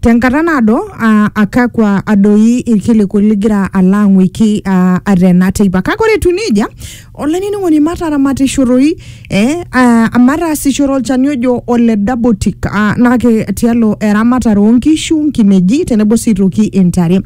Tenkata naado, uh, akakwa adoi irkiliku ligira alo ang'uiki uh, atena teipa. Kake ore etiu nejia, olainining'oni mataramatisoroi eh, uh, mataasishore olchani ojo ole Dabotic uh, nake tialo eramatare oonkishu, nkineji tenebo sii toki intare.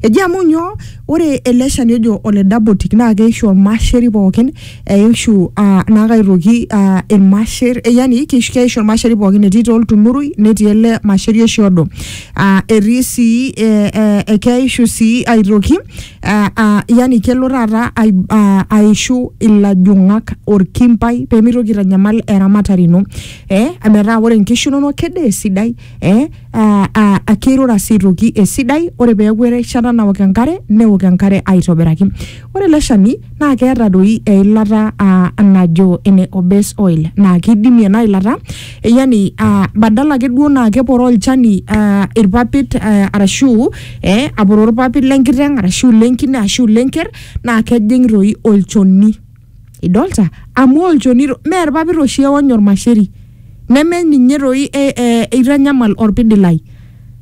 Eji amu nyoo, ore ele shani ojo ole Dabotic naa keishu ormasheri pookin eishu ah, naake aitoki ah, irmasher eh, yani keish- keishu irmasheri pookin etii taa oltunurui netii ele masheri oshi odo ah, etii sii eh, eh, eh, keishu sii aitoki ah, ah, yani kelo taata ai- ah, aishu ilajung'ak orkimbai pemeitoki aitanyamal eramatare ino eh, metaa ore inkishu inonok kede esidai eh, a- a- a- keirura sii aitoki esidai ore peeku erishata naok enkare neok enkare aitobiraki ore ele shani naa keeta doi eilata ah, najo ene obes oil naa keidimie ena ilata eh, yani ah, badala ake duo naa keporoo olchani ah, irpapit ah, arashu eh, aporoo irpapit lenkiteng arashu lenkine arashu lenker naa kejing toi olchoni idolta amu olchoni to- mee irpapit oshi eony ormasheri neme ninye toi e- e- eitanyamal orpidilai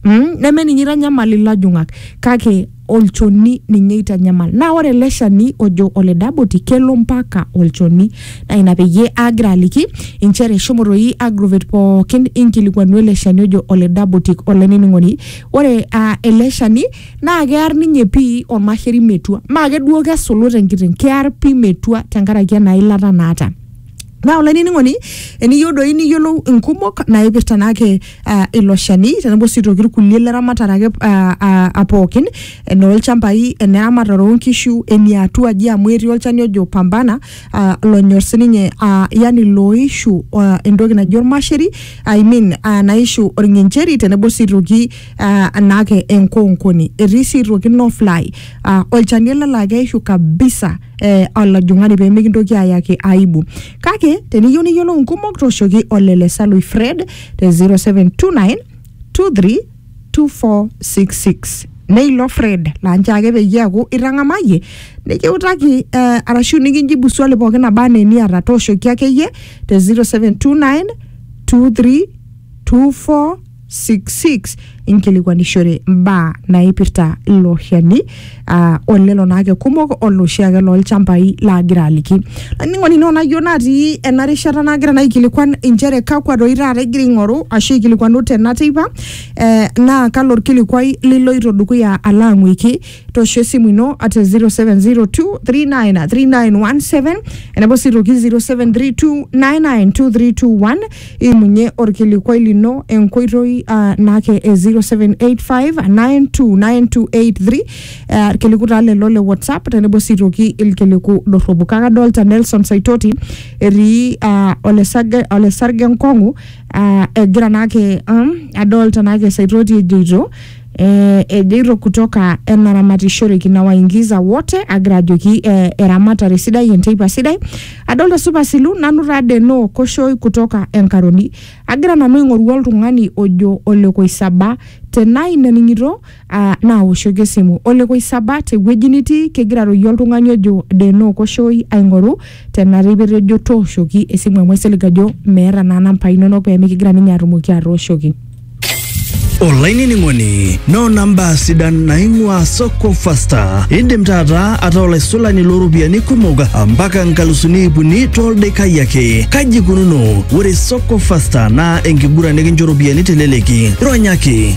mm? neme ninye eitanyamal ilajung'ak kake olchoni ninye eitanyamal naa ore ele shani ojo ole daboti kelo mpaka olchoni naa ina peyie aagira aliki inchere shomo toi agrovet pookin inkilikuanu ele shani ojo ole dabotic olainining'oni ore uh, ele shani naa kear ninye pii ormasheri metua maa keduo kesulut enkiteng kear pii metua tenkaraki ena ilata naata naa olainining'oni eniyieu doi niyiolou inkumok naipirta naake uh, ilo shani tenebo sii toki irkulie leramatare ake uh, uh, pookin enoolchambai eneramatare oonkishu eniatua aji amu etii olchani ojo pambana uh, lonyor sininye uh, yani looishu uh, entoki naji ormasheri I mean uh, naishu orng'encheri tenebo sii toki ah, anake enkoonkoni etii sii aitoki no fly ah, olchani ele laa keishu kabisa eh, olajung'ani pee mikintoki ayaki aibu kake teniyieu niyiolou nkumok toshoki olele salui fred te 0729 23 2466 neilo fred laa nche ake peyie eaku itang'amayie nikiutaki eh, arashu nikinjibu swali pookin naba anaa eniata tooshoki akeyie te 0729 23 24 66 inkilikwanishore mbaa naipirta ilo shani uh, olelo naake kumok oloshiake lolchambai laagira aliki ainining'oni ino nayieu natii ena rishata nagira naikilikuan inchere kakwa doi taata igira aing'oru ashu aikilikwanu tena teipa eh, naa kalo orkilikwai liloito dukuya alo ang'uiki tosho esimu ino at 0702393917 enabo sii toki 0732992321 imunye orkilikwai lino enkoitoi ah, naake e 0785929283 eh, irkiliku taa lelo le whatsapp tenebo sii toki ilkiliku dorropu kake adolta nelson saitoti etii ah, olesarge olesarge nkong'u ah, egira naake um, adolta naake saitoti ejoito eh, ejoito kutoka enaramatishoreki na waingiza wote agira ajoki eh, eramatare sidai enteipa sidai adolta supa silu nanu taa deno koshoi kutoka enkaroni agira nanu aing'oru oltung'ani ojo olekoisaba tenaa ina ning'ito ah, naawoshoki esimu olekoisaba tewueji nitii kegira aroyie oltung'ani ojo deno koshoi aing'oru Tenaa ipoito ejo tooshoki esimu amu aisilig ajo meeta naa nampai inonok pee mikigira ninye atumoki atooshoki. olainining'oni noona mbaa sidan naing'ua soko fasta indim taata ataa olaisulani looropiyiani kumok mpaka nkalusuni iip uni toldekai ake kaji ikununo ore soko fasta naa enkiguran nikincho ropiyiani teleleki ronyaki